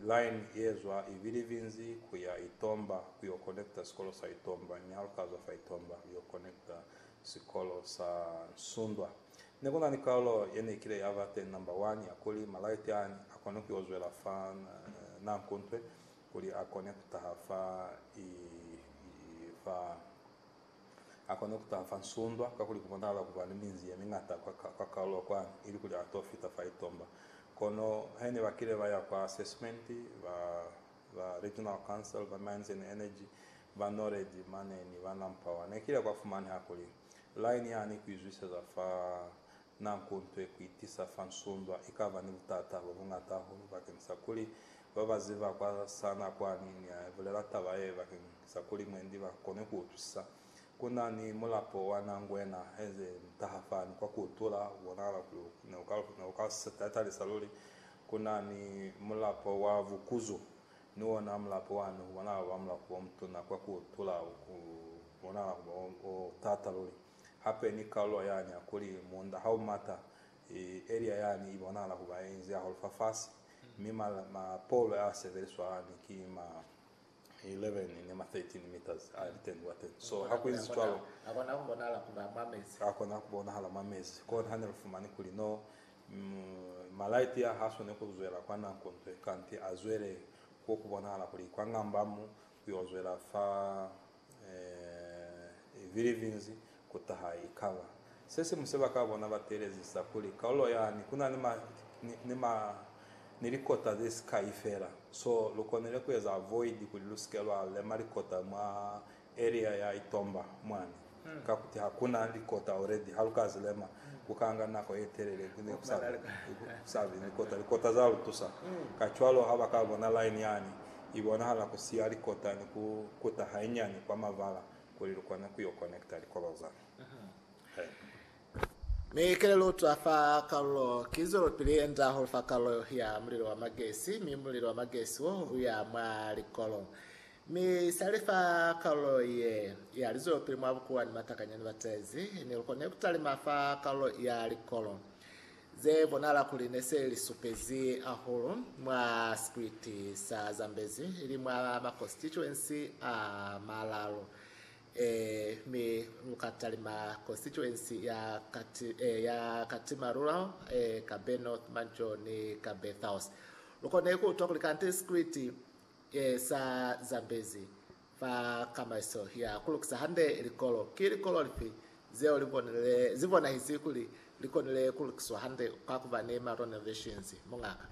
Line yezwa Ibilivinzi kuya Itomba kuyo connecta sikolo sa Itomba, Nyalkazo fa Itomba kuyo connecta sikolo sa Nsundwa. Nekuna ni kaulo yeneikile yaba teñi number one yakuli malaiti aani akone kuyo zwela fa Nankuntwe kuli a kone kutaha fa fa A kona ku taha fa nsundwa, kakuli ku bonahala ku ba ni minzi ye miñata kwa kaulu ya kwani, ilikuli a to fita fa itomba. Kono he ne ba kile ba ya kwa Assessment, ba, ba Regional Council, ba Mines and Energy, ba Noredi mane ni ba Nampower, ne kile kwa fumaneha kuli, line ya ni ku izwiseza fa Na kuntwe kuitiisa fa nsundwa ikaba ni butata bo bungata hahulu bakeng sa kuli ba ba ziba kwa sa na kwani ni a bulela taba ye bakeng sa kuli mwendi ba kone ku utwisisa. Ku na ni mulapo wa na ngwena heze ntaha fani kwa ku utula, u bonahala kuli u ne u ka, ne u ka tatalisa luli. Ku na ni mulapo wa vukuzu, ni ona mulapo wa ne u bonahala ku ba mulapo o mutuna kwa ku utula, u bonahala ku ba o, o tata luli. Hape ni kalulo yani ya kuli muunda ha u mata, elia yani i bonahala ku ba ye inzi hahulu fafasi, mi mapolo a sebeliswa yani ki ma 11 ni ma 13 meters a litendi kwa teñi. So ha ku inzi cwalo, a kona ku bonahala ku ba mwa mezi. A kona ku bonahala mwa mezi. Kona ha ne lu fumani kuli no, malaiti a ha swani ku zwela kwa nako nto ye, kanti a zwele kwo ku bonahala kuli kwa ngamba mu Ku yo zwela fa Philippines ku taha i ka ba se siñwi se ba ka bona ba teelezisa kuli kalulo yani ku na ni ma ni likota ze si kai fela. So, lu konile ku eza avoid kuli lu si ke lwa lema likota mwa area ya Itomba mwani. Kakuti ha ku na likota already, ha lu ka zi lema, ku ka nga nako ye telele ku ne ku sa be, ku sa be ni likota. Likota za lu tusa. Kacwalo ha ba ka bona line yani, i bonahala ku siya likota ni ku kuta hainyani kwa mavala kuli lu kone ku yo connecta likolo za haibo. Mi kele lu utwa fa kalulo, ki zwelopili ye nda hahulu fa kalulo ya mulilo wa magesi, mi mulilo wa magesi wo u ya mwa likolo. Mi sali fa kalulo ye ya lizope mwa bukuwa ni matakanyani ba tezi, ne lu kone ku talima fa kalulo ya likolo ze bonahala kuli ne se li supezi hahulu mwa sikwiti sa Zambezi ili mwa makonstituensi a malalu. E, mi lu ka talima konstituensi ya Kati, e, ya Katima Rural, e, Kabe North, Mancho ni Kabe South. Lu kone ku utwa kuli kante sikwiti Ke sa zambezi fa kamaiso ya kulukisa hande likolo. Ki likolo lifi zeo li bonahisi kuli li konile kulukiswa hande ka kuba ni ma renovations, muñaka?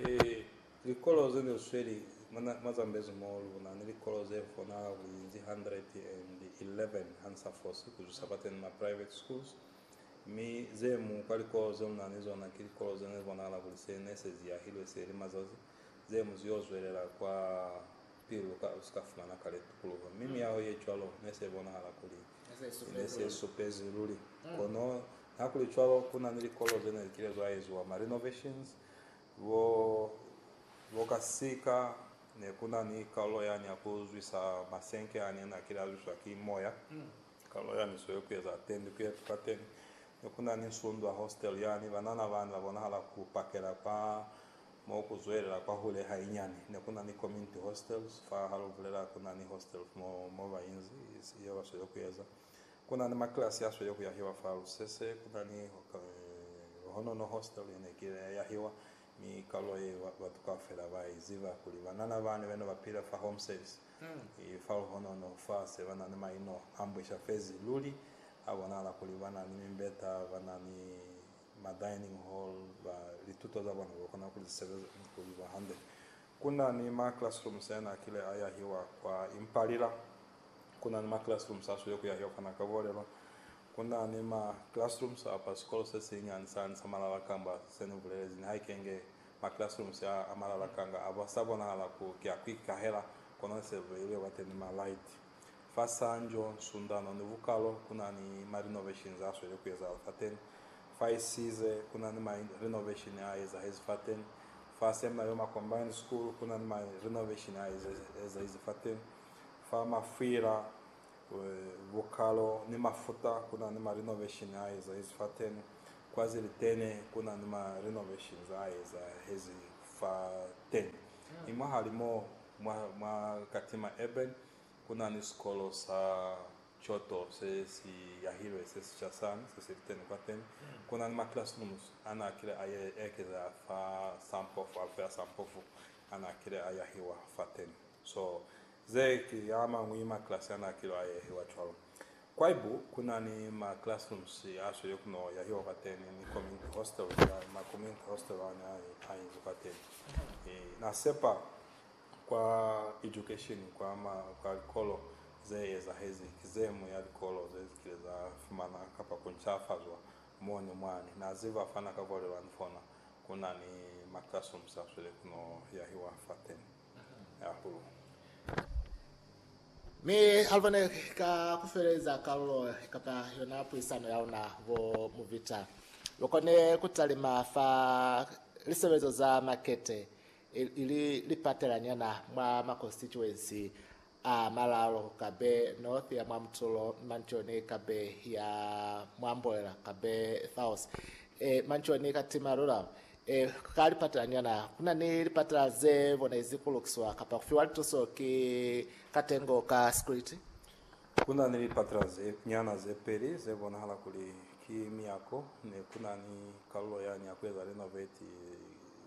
Ee, likolo ze li sweli mwa Zambezi mo lu na ni likolo ze konahala ku inzi 111 ha ni sa fosi ku zwisa fateni ma private schools, mi ze mu kwa likolo ze lu na ni zona ki likolo ze ne li bonahala kuli se ne se ziyahilwe se li mazazi Ze mu zio zwelela kwa pili lu ka, lu si ka fumana kale tukuluho. Mi miyaho ye cwalo ne se bonahala kuli ne se supezi luli. Kono nihakuli cwalo, ku na ni likolo ze ne li kile zwa eziwa ma renovations, bo, bo ka sika, ne ku na ni kalulo yani ya ku zwisa masenke ani a ne a kile a zwiswa ki moya, kalulo yani swe ku eza tendi ku yetu fateni. Ne ku na ni Nsundwa Hostel yani, banana bani ba bonahala ku pakela kwa Mo ku zwelela kwahule hainyani, ne ku na ni community hostels. Fa ha lu bulela ku na ni hostel mo, mo ba inzi, ye ba sweli ku eza. Ku na ni makilasi a sweli ku yahiwa fa lusese. Ku na ni Honono Hostel ye ne ki ile ya yahiwa, mi kalulo ye ba, batu kaufela ba i ziba kuli banana bani be ne ba pile fa Home Service i fa Luhonono. Fa se ba na ni maino a mbwesha fezi luli, a bonahala kuli ba na ni mimbeta, ba na ni ma dining hall ba lituto za bona ba kona ku li sebeza ni ku li ba hande. Ku na ni ma classrooms a na kile a yahiwa kwa Impalila, ku na ni ma classrooms a swile ku yahiwa fana ka Bolelwa, ku na ni ma classrooms a pa sikolo se sinyani sani sa Malala kamba se ni bulelezi nihaike nge ma classrooms a a malala kanga a ba sa bonahala ku ki a ku ikahela, kono ne se beilwe bate ni ma light. Fa Sanjo, Sundano ni Vukalo ku na ni ma renovations a sweli ku ezahala fateni. Fa Isize ku na ni ma renovation a ezahezi fateni. Fa Seminarioma Combined School ku na ni ma renovation a ezahezi fateni. Fa Mafwila, Vukalo ni Mafuta ku na ni ma renovation a ezahezi fateni. Kwa Zilitene ku na ni ma renovations a ezahezi fateni. Mi mwahalimo Mwa, mwa Katima Urban, ku na ni sikolo sa Kyoto se si yahilwe se sica sani, se si liteni kwateni. Ku na ni ma classrooms a n'a kile a ekeza fa sa mpofu, alufu ya sa mpofu a n'a kile a yahiwa fateni. So, ze ki a mañwi ma class a n'a kile a yahiwa cwalo. Kwaibu ku na ni ma classrooms a sweli ku no yahiwa kwateni ni community hostel ya ma community hostel a ne a inzi kwateni. I na sepa kwa education kwa ma kwa likolo ze ezahezi ki ze mu ya likolo ze zikile za fumana kapa ku ncafazwa mo ni mwani na ziba fa na ka kolelwa ni fona ku na ni ma classrooms a sweli ku no yahiwa fateni. hahulu. Mi Alva ne ka ku feleza kalulo kapa yona puisano ya luna bo Muvita lu kone ku talima fa lisebelezo za makete ili lipatelaniana mwa makonsituensi a malalo kabe north ya mwa mutolo manchoni kabe ya mwa mboela kabe south e manchoni ka tima lula e ka lipatela nyana kuna ni lipatela ze bonezi ku lukiswa kapa ku fiwa lituso ki katengo ka security kuna ni lipatela ze nyana ze peli ze bonahala kuli ki miyako ne kuna ni kalulo yani ya ku eza renovate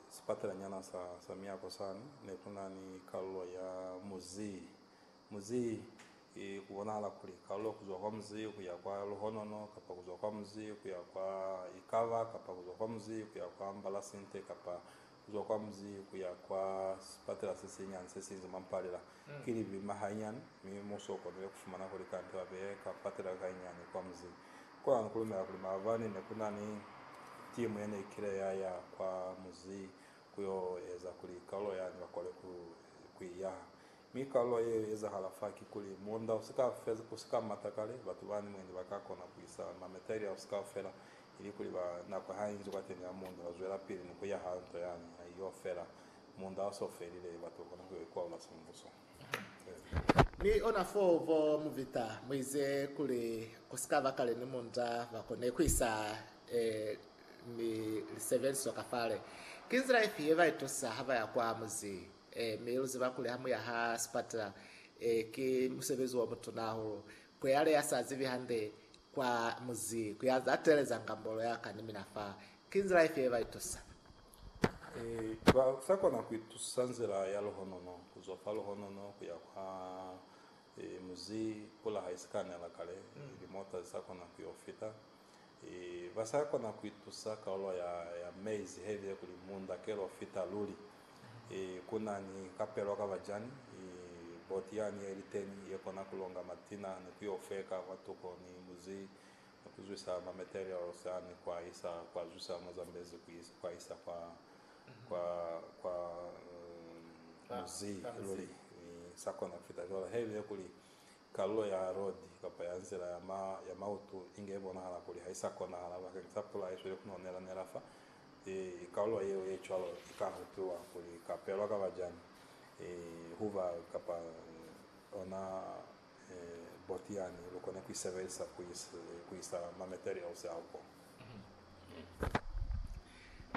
sipatelanyana sa, sa miako sani, ne ku na ni kalulo ya muzi, muzi, i, ku bonahala kuli, kalulo ku zwa kwa muzi ku ya kwa luhonono, kapa ku zwa kwa muzi ku ya kwa ikaba, kapa ku zwa kwa muzi ku ya kwa mbalasinte, kapa ku zwa kwa muzi ku ya kwa sipatela se sinyani se sinzi mwa mpalela. Ki libi mahayinyani, mi musi o konile ku fumana kuli kande ba beye ka patela ka inyani kwa muzi. Kono ani kulumela kuli maabani nekunani timu yeneikile yaya kwa muzi kuyo eza kuli kalulo yani bakole kuiyaha. Mi kalulo ye ezahala fa kikuli, muunda usika mata kale, batu bani mwendi bakakona kuisa mameteri ao kaufela ili kuli nako hainzi kwateni ya muunda bazwelapili ni kuyaha nto yani haiyofela. Muunda oso ufelile, batu bakona kuyo ikualula sembuso. Mi ona fo bo Mubita muize kuli kusikaba kale ni munda bakone kuisa e ni lisebeliso ka fale. Ki nzila ifi ye baitusa ha baya kwa muzi? E mi luziba kuli hamuya ha sipatela e ki musebezi omutuna hahulu. Kweale yasa zibi hande kwa muzi kuyanza ateleza ngambolo yaka ni mina fa. Ki nzila ifi ye baitusa? Ba sa kona ku itusa nzila ya luhonono ku zwa fa luhonono ku ya kwa muzi pula ha i si ka nela kale, limota zi sa kona ku yo fita. Ba sa kona ku itusa kalulo ya mezi he bile kuli munda ke lo fita luli. Ku na ni kapelo ka bajani, boti yani ye li teñi ye kona ku longa matina ni ku yo feka kwatuko ni muzi Ni ku zwisa ma materials a ni kwa isa kwa zwisa mo zambezi ku isa kwa isa kwa kwa kwa muzi luli ni sa kona ku fita cwalo ha ibe kuli kalulo ya road kapa ya nzila ya ma ya mautu inge ibonahala kuli ha isa konahala bakeng sa pula ye sweli ku no nela nela fa i kalulo yeo ye cwalo i ka hupiwa kuli i ka pelwa ka bajani i huba kapa ona Boti yani lu kona ku i sebelisa ku isa ma materials a ko.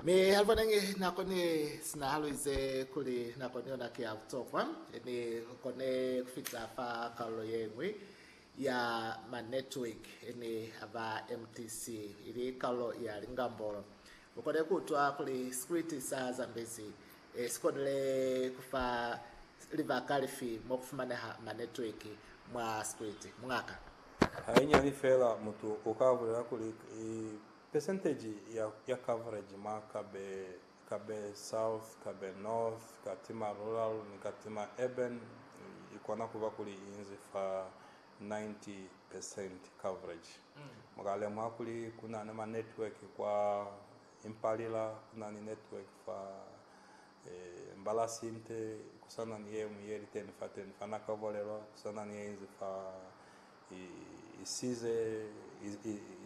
Mi Alvaneñi na koni sinahalo ize kuli nako ni yona ki ya butokwa, mi lu kone ku fita fa kalulo ye ñwi ya ma network ni a ba MTC, ili kalulo ya lingambolo. Lu kone ku utwa kuli Scriti sa Zambezi Si konile ku fa libaka lifi mo ku fumaneha manetweki mwa sikwiti, muñaka? Hainyani fela, mutu u ka bulela kuli, Pesenteji ya coverage mwa Kabe, Kabe South, Kabe North, Katima Rural ni Katima Urban i kona ku ba kuli i inzi fa 90 pesenti coverage. Mu ka lemuha kuli ku na ni manetweki kwa Impalila kuna ni network fa Mbalasi nte kusana ni yeñwi yeli teni fateni fa nako ya bulelo kusana ni yeinzi fa isize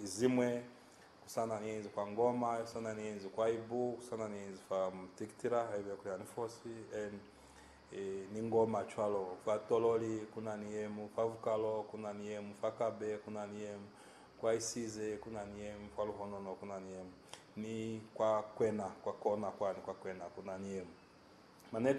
izimwe kusana ni yeinzi kwa Ngoma kusana ni yeinzi kwa Ibu kusana ni yeinzi fa Mtikitila haiba ya kuya ni Fosi en ni Ngoma cwalo fa Tololi kuna ni yemu fa Vukalo kuna ni yemu fa Kabe kuna ni yemu Kwa isize ku na ni yemu, kwa luhonono ku na ni yemu, ni kwa kwena, kwa kona kwani kwa kwena ku na ni yemu. Maneto.